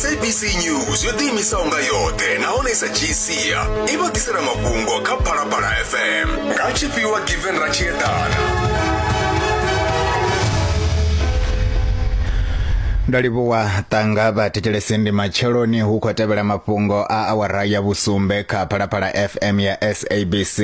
sabc news yo ḓiimisaho nga yoṱhe nahone sa gsia i vha ḓisela mafhungo kha phalaphala fm nga tshifhiwa given ra tshi eḓana ndo livhuwa ṱanga vha thetshelesi ndi matsheloni hu khou tevhela mafhungo a awara ya vhusumbe kha phalaphala fm ya sabc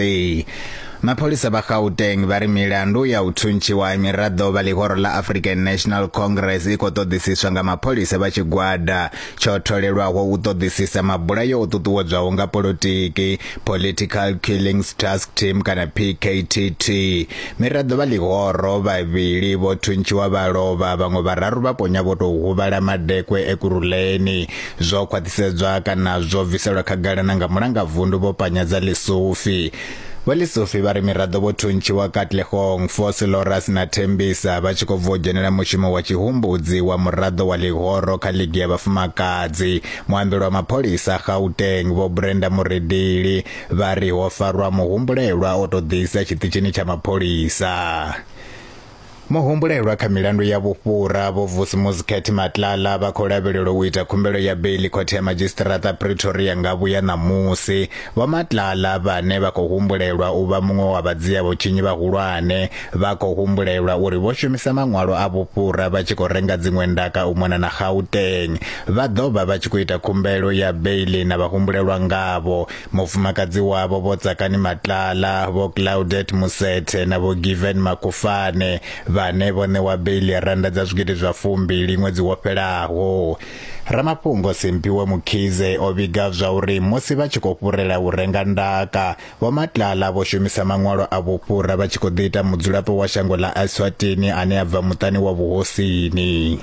Mapholisa vha Gauteng vha ri milandu ya u thuntshiwa ha miraḓo vha ḽihoro ḽa African National Congress i khou ṱoḓisiswa nga mapholisa vha tshigwada tsho tholelwaho u ṱoḓisisa mabulayo o ṱuṱuwedzwaho nga polotiki Political Killings Task Team kana PKTT. Miraḓo vha ḽihoro vhavhili vho thuntshiwa vha lovha vhaṅwe vhararu vha ponya vho tou huvhala madekwe e Kuruleni. Zwo khwaṱhisedzwa kana zwo bviselwa khagala na nga mulangavundu vho Panyadza Lesufi. Vho Lesufi vha ri miraḓo vho thuntshiwa Katlehong, Fosi Loras na Thembisa vha tshi khou bva u dzhenela mushumo wa tshihumbudzi wa muraḓo wa ḽihoro kha ligi ya vhafumakadzi. Muambeli wa mapholisa Gauteng, Vho Brenda Muredili, vha ri ho farwa muhumbulelwa o tou ḓisa tshiṱitshini tsha mapholisa. Muhumbulelwa kha milandu ya vhufhura Vho Vusimuzi Khethi Matlala vha khou lavhelelwa u ita khumbelo ya beiḽi khothe ya madzhisiṱiraṱa Pretoria nga vhuya ṋamusi. Vho Matlala vhane vha khou humbulelwa u vha muṅwe wa vhadzia vhutshinyi vhahulwane vha khou humbulelwa uri vho shumisa maṅwalo a vhufhura vha tshi khou renga dziṅwe ndaka u mona na Gauteng. Vha ḓo vha vha tshi khou ita khumbelo ya beiḽi na vhahumbulelwa ngavho mufumakadzi wavho vho Tsakani Matlala vho Claudette Musethe na vho Given Makufane vhane vho ṋewa beiḽi ya randa dza zwigidi zwa fumbili ṅwedzi wo fhelaho ramafhungo Simphiwe Mukhize o vhiga zwa uri musi vha tshi khou fhurela u renga ndaka vho Matlala vho shumisa maṅwalo a vhufhura vha tshi khou ḓi ita mudzulapo wa shango ḽa Eswatini ane a bva muṱani wa vhuhosini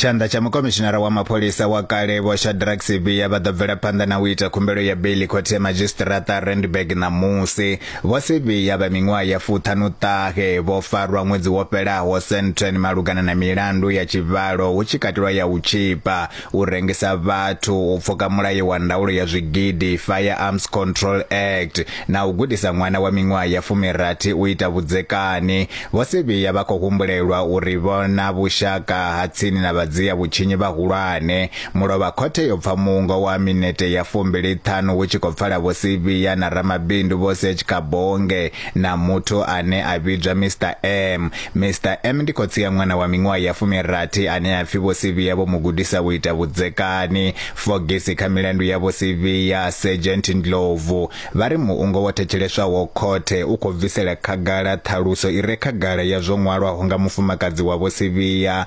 tshanḓa tsha mukomishinara wa mapholisa wa kale vho shadrack sivia vha ḓo bvela phanḓa na u ita khumbelo ya beli khothe ya madzhisiṱiraṱa randburg ṋamusi vho sivia vha miṅwaha ya fuṱhanu ṱahe vho farwa ṅwedzi wo fhelaho centren malugana na milandu ya tshivhalo hu tshi katelwa ya u tshipa u rengisa vhathu, u pfuka mulayo wa ndaulo ya zwigidi, Firearms Control Act, na u gudisa ṅwana wa miṅwaha ya fumirathi u ita vhudzekani. Vho Sibiya vha khou humbulelwa uri vho na vhushaka ha tsini na vhadzia vhutshinyi vhahulwane. Mulovha khothe yo pfa muungo wa minete ya fumbili ṱhanu hu tshi khou pfala Vho Sibiya na ramabindu Vho Serge Kabonge na muthu ane a vhidzwa Mister M. Mister M ndi khotsi ya ṅwana wa miṅwaha ya fumirathi ane a pfi Vho Sivhiya vho mu gudisa u ita vhudzekani. Fogisi kha milandu ya Vho Sivhiya, Sergeant Ndlovu, vha ri muungo wo thetsheleswaho khothe u khou bvisela khagala ṱhaluso i re khagala ya zwo ṅwalwaho nga mufumakadzi wa Vho Sivhiya,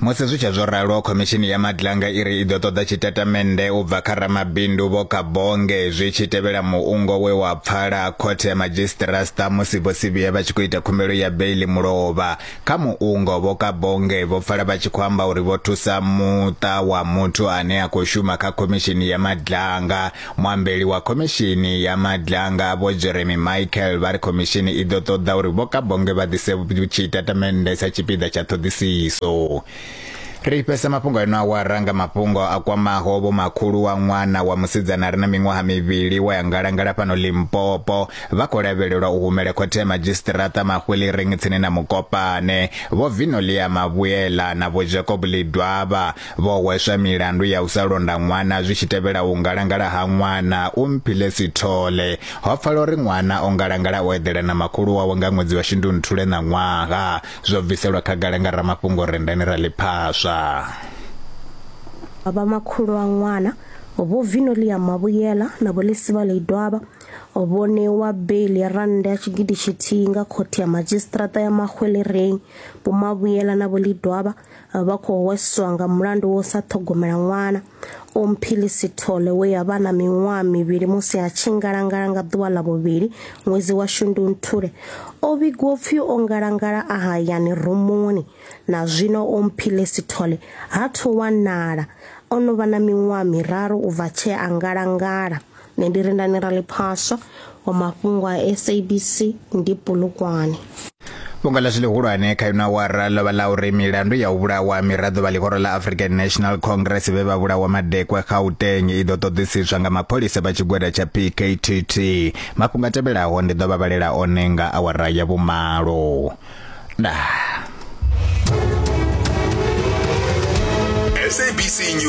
Musi zwi tshe zwo ralo, Khomishini ya Madlanga i ri i ḓo ṱoḓa tshitatamennde u bva kha ramabindu Vho Kabonge zwi tshi tevhela muungo we wa pfala Khothe ya Madzhisiṱirasṱa musi Vho Sibiya vha tshi khou ita khumbelo ya beiḽi mulovha. Kha muungo, Vho Kabonge vho pfala vha tshi khou amba uri vho thusa muṱa wa muthu ane a khou shuma kha Khomishini ya Madlanga Muambeli wa khomishini ya Madlanga Vho Jeremy Michael vha ri khomishini i ḓo ṱoḓa uri Vho Kabonge vha ḓise tshitatamennde sa tshipiḓa tsha ṱhoḓisiso. Ri fhesa mafhungo a ino awara nga mafhungo a kwamaho vho makhulu wa ṅwana wa musidzana a re na miṅwaha mivhili wa ya ngalangala fhano Limpopo vha khou lavhelelwa u humela khothe ya madzhisiṱiraṱa Mahwiliring tsini na Mukopane. Vho Vinolia Mavhuyela na Vho Jacob Lidwaba Vho hweswa milandu ya u sa londa ṅwana zwi tshi tevhela u ngalangala ha ṅwana u Mphile Sithole. Ho pfala uri ṅwana o ngalangala o eḓela na makhulu wawe nga ṅwedzi wa Shundunthule na ṅwaha. Zwo bviselwa khagala nga ramafhungo Rendani Raliphaswa. Vha makhulu wa ṅwana Vho Vinolia Mavhuyela na Vho Lisivale Idwaba vho ṋewa beiḽi ya rannda ya tshigidi tshithihi nga khothe ya madzhisiṱiraṱa ya Mahwelereng. Vho Mavhuyela na Vho Lidwaba vha khou hweswa nga mulandu wo sa ṱhogomela ṅwana omphili sithole we ya vha na miṅwaha mivhili musi a tshi ngalangala nga ḓuvha ḽa vhuvhili ṅwedzi wa shundunthule o vhigwa upfi o ngalangala a hayani rumuni na zwino omphili sithole ha thu wanala o no vha na miṅwaha miraru u bva tshee a ngalangala nṋe ndi rindani ra ḽiphaswa wa mafhungo a sabc ndi pulukwane fhungo ḽashu ḽihulwane kha ino awara ḽo vha ḽa uri milandu ya u vhulawa miraḓo vha ḽihoro ḽa african national congress vhe vha vhulawa madekwe gauteng i ḓo ṱoḓisiswa nga mapholisa vha tshigwada tsha pktt mafhungo a tevhelaho ndi ḓo vha vhalela one nga awara ya vhumalo dah sabc news